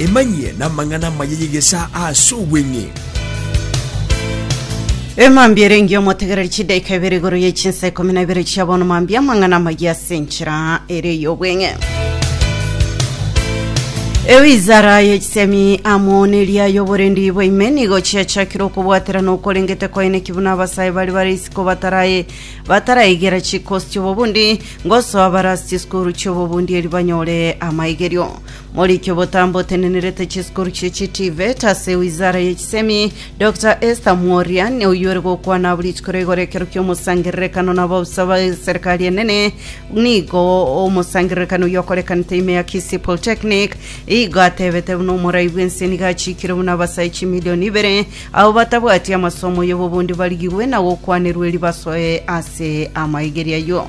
Emanyie namang'ana amaya y'egesaa ase obweng'e. Emambia ere engiya omotegereri chidaika ibere igoro ye chinsa ikomi na ibere chia bono mambia amang'ana amaya ase enchera ere y'obweng'e. Ewizara ye chisemi amo neria y'oborendi bwa ime nigo chiachakire okobwaterana okorengete kwaeneki buna abasae bari bare isiko batarae bataraegera chikosi chi'obobundi Ngosoa abarasi chisukuru chi'obobundi erio banyore amaigerio. Morikie obotambe otenenerete chisukuru chie chitivet ase wizara ye chisemi, Doctor Esther Mworia, oyoire gokwana abwo rituko rigoro ekero ki'omosangererekano na abaofisa ba serikali enene, nigo omosangererekano oyio okorekanete ime ya Kisii Polytechnic, igo atebete buna omorai bw'ense nigo achikire buna abasae chimilioni ibere Abo batabwati amasomo y'obobundi barigigwe na gokwanerwa eri basoe ase amaigeria ayio.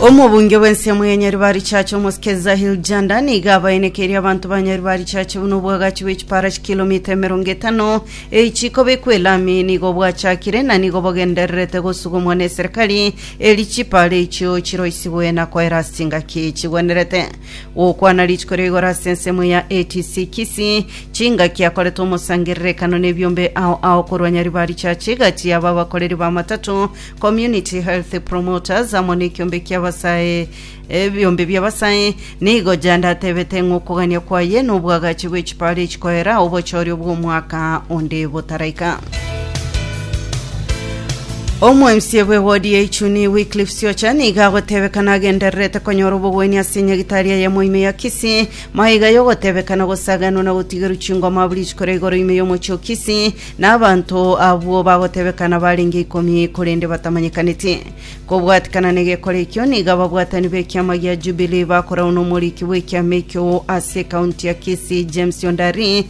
Omobunge bw'ensemo ya Nyaribari Church Omosike Zahil Janda nigo abaenekeire abanto ba Nyaribari Church buna obwagachi bw'echipara chikilomita emerongo etano eyi chikobekwa elami nigo bwachakire na nigo bogendererete gosugumwa neserikari eri chipara echio chiroisigwe na koera ase chingaki chigwenerete. Gokwana rituko ria igoro ase ensemo ya ATC Kisii, chingaki akorete omosangererekano nebiombe ao ao korwa Nyaribari Church egati yaba abakoreri ba matatu, Community Health Promoters amo nekiombe kia abasae ebiombe bia abasae. Nigo Janda atebete ng'a okogania kwaye nobwagachi bwe chipara echikoera obochoria obw'omwaka onde botaraika. Omoemisia bw'ewodi ya Ichuni Wycliffe Siocha nigo agotebekana agendererete konyora obogwenia ase enyagitari eye mo ime ya Kisii. Maiga y'ogotebekana gosaganwa na gotigerwa chingoma abwo rituko ria igoro ime y'omochie o Kisii, na abanto abwo bagotebekana barenge ikomi korende batamanyekaneti. Kobwatikana negekora ekio, nigo ababwatani b'ekiama gia Jubilee bakorauna omoriki bw'ekiama ekio ase ekaunti ya Kisii James Ondari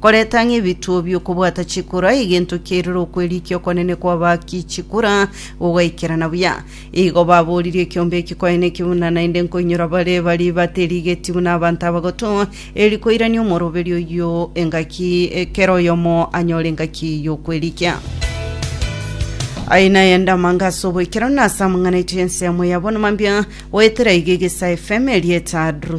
Koreta ng'a ebituo bi'okobwata chikura, egento kiairire okwerikia okonene kw'abaaki chikura, gogaikerana buya. Igo babooririe ekiombe eki kwaene ki buna naende nkoinyora bare baria baterigetie buna abanto abagotu, erio koirania omoroberi oyio engaki, kera oyomo anyore engaki y'okwerikia. Aye nayende amanga ase oboikeranu na ase amang'ana aito y'ensemo ya bonama mbia, goetera iga egesae FM erieta Drusilla.